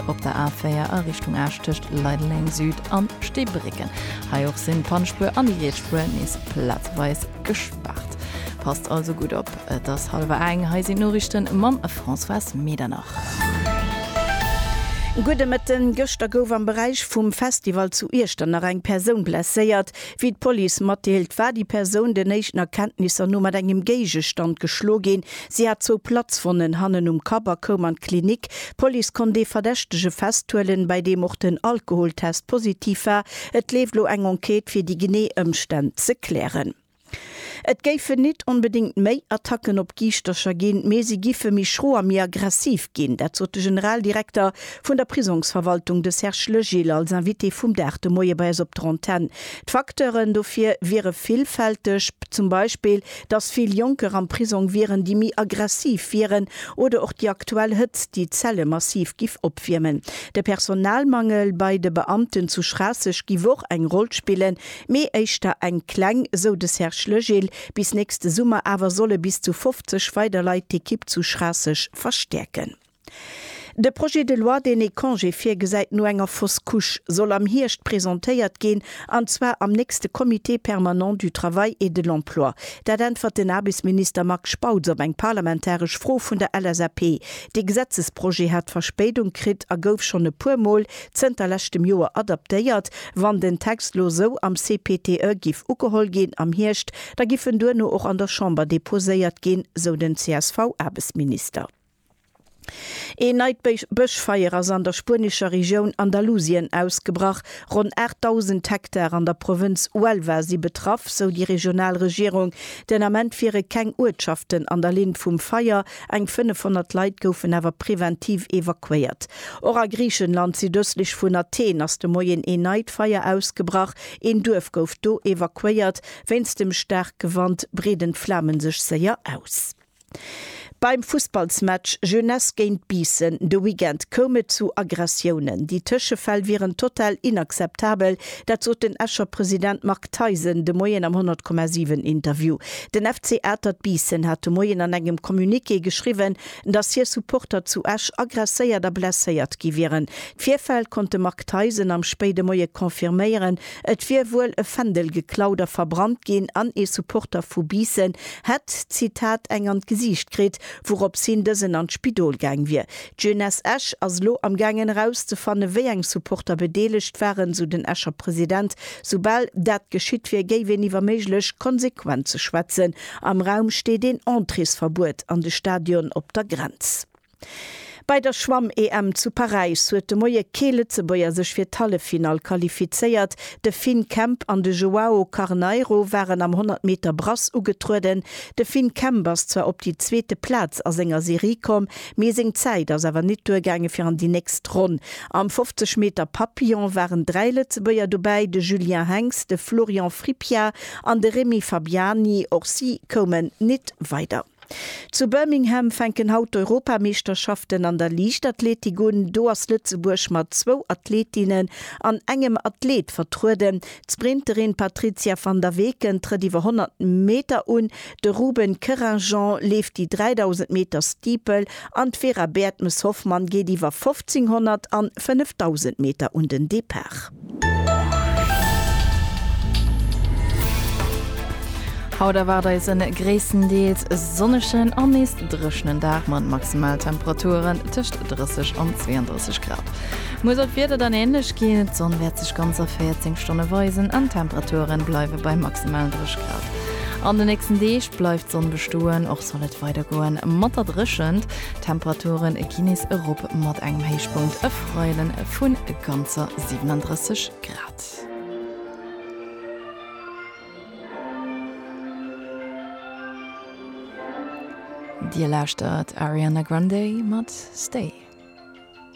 Op der A4 a Richtung Esch tëscht Leideleng Süd an Steebrécken. Hei och sinn d'Pannspuer an déi Rietsspuer nees plazeweis gespaart. Passt also gutt op. Et ass hallwer eng. Hei sinn d'Noriichten mam Françoise Medernach. Gudde Mëtten. Gëschter gouf am Beräich vum Festival zu Iechternach eng Persoun blesséiert. Wéi d'Police matdeelt, war déi Persoun den éischten Erkenntnisser no mat engem Géigestand geschlo ginn. Si hat zwou Platzwonnen hannen um Kapp a koum an d'Klinik. D'Police konnt ee Verdächtege festhuelen, bei deem och den Alkoholtest positiv war. Et leeft elo eng Enquête, fir déi genee Ëmstänn ze klären. Et géifen nit onbedéngt méi Attacken op Giischtercher ginn, mee si giffe méi schro a méi aggressiv ginn. Dat sot de Generaldirekter vun der Prisongsverwaltung, de Serge Legil, als Invité vum Dag de Moie bei eis op der Antenn. D'Facteuren dofir wiere villfälteg, zum Beispill dass vill Jonker am Prisong wieren, déi méi aggressiv wieren, oder och déi aktuell Hëtzt, déi d'Zelle massiv giff opwiermen. De Personalmangel bei de Beamten zu Schraasseg giff och eng Roll spillen, mee éischter eng kleng, sou de Serge Legil. Bis nächste Summer awer solle bis zu 50 weider Leit d'Ekipp zu Schraasseg verstäerken. De Projet de loi, deen ee Congé virgesäit no enger Fausse Couche, soll am Hierscht presentéiert ginn, an zwar am nächste Comité permanent du travail et de l'emploi. Dat äntwert den Aarbechtsminister Marc Spautz op eng parlamentaresch Fro vun der LSAP. Dee Gesetzesprojet hat Verspéidung kritt a gouf schonn e puer Mol zënter leschtem Joer adaptéiert. Wann den Text lo esou am CPTE giff ugeholl ginn am Hierscht, da giff en duerno och an der Chamber deposéiert ginn, sou den CSV-Aarbechtsminister. Een neit Bëschfeier ass an der spuenescher Regioun Andalusien ausgebrach. Ronn 8.000 Hektar an der Provënz Huelva si betraff, sou déi regional Regierung. Den Ament wiere keng Uertschaften an der Linn vum Feier, eng 500 Leit goufen awer preventiv evakuéiert. Och a Griichenland, südëstlech vun Athen, ass de Moien een neit Feier ausgebrach. Een Duerf gouf do evakuéiert. Wéinst dem staarke Wand breeden d'Flame sech séier aus. Beim Fussballsmatch Jeunesse géint Biissen de Weekend koum et zu Aggressiounen. Déi Tëschefäll wieren total inakzeptabel, dat sot den Escher President Marc Theisen de Moien am 100,7 Interview. Den FC Atert Biissen hat de Moien an engem Communiqué geschriwwen, dass hir Supporter zu Esch aggresséiert a blesséiert gi wieren. D'Virfäll konnt de Marc Theisen am spéide Moie confirméieren, Et wier wuel e Fändel geklaut a verbrannt ginn an ee Supporter vu Biissen hätt, Zitat, eng an d'Gesiicht kritt, wourops hin dësen an d'Spidol gaang wier. D'Jeunesse Esch ass elo am gaangen erauszefanne wéi eng Supporter bedeelegt waren, sou den Escher President. Soubal dat geschitt wier, géif een iwwer méiglech Konsequenze schwätzen. Am Raum steet een Entréesverbuet an de Stadion op der Grenz. Bei der Schwamm-EM zu Paräis huet de Moie kee Lëtzebuerger sech fir d'Halleffinall qualifizéiert. De Finn Kemp an de Joao Carneiro waren am 100 Meter Brass ugetrueden. De Finn Kemp ass zwar op déi zweete Plaz a senger Serie komm, mee seng Zäit ass awer nit duergaange fir an déi nächst Ronn. Am 50 Meter Papillon waren dräi Lëtzebuerger dobäi, de Julien Henx, de Florian Frippia an de Remy Fabiani. Och si koumen nit weider. Zu Birmingham fänken haut d'Europameeschterschaften an der Liichtathletik un. Do ass Lëtzebuerg mat zwou Athletinnen an engem Athlet vertrueden. D'Sprinterin Patrizia van der Weken trëtt iwwer 100 Meter un, de Ruben Querinjean leeft déi 3.000 Meter Steeple an d'Vera Baertmes-Hoffmann geet iwwer 1.500 an 5.000 Meter un den Depart. Haut erwaart eis en gréisstendeels sonnegen an nees dréchnen Dag mat Maximaltemperaturen tëscht 30 an 32 Grad. Muer soll d'Wieder dann änlech ginn, d'Sonn wäert sech ganzer 14 Stonne weisen an d'Temperature bleiwe bei maximal 3 Grad. An de nächsten Deeg bleift d'Sonn bestoen, och soll et weidergoe mat der Dréchent. D'Temperature gi nees erop mat engem Héichpunkt e Freiden vu ganzer 37 Grad. Dir lauschtert Ariana Grande mat Stay.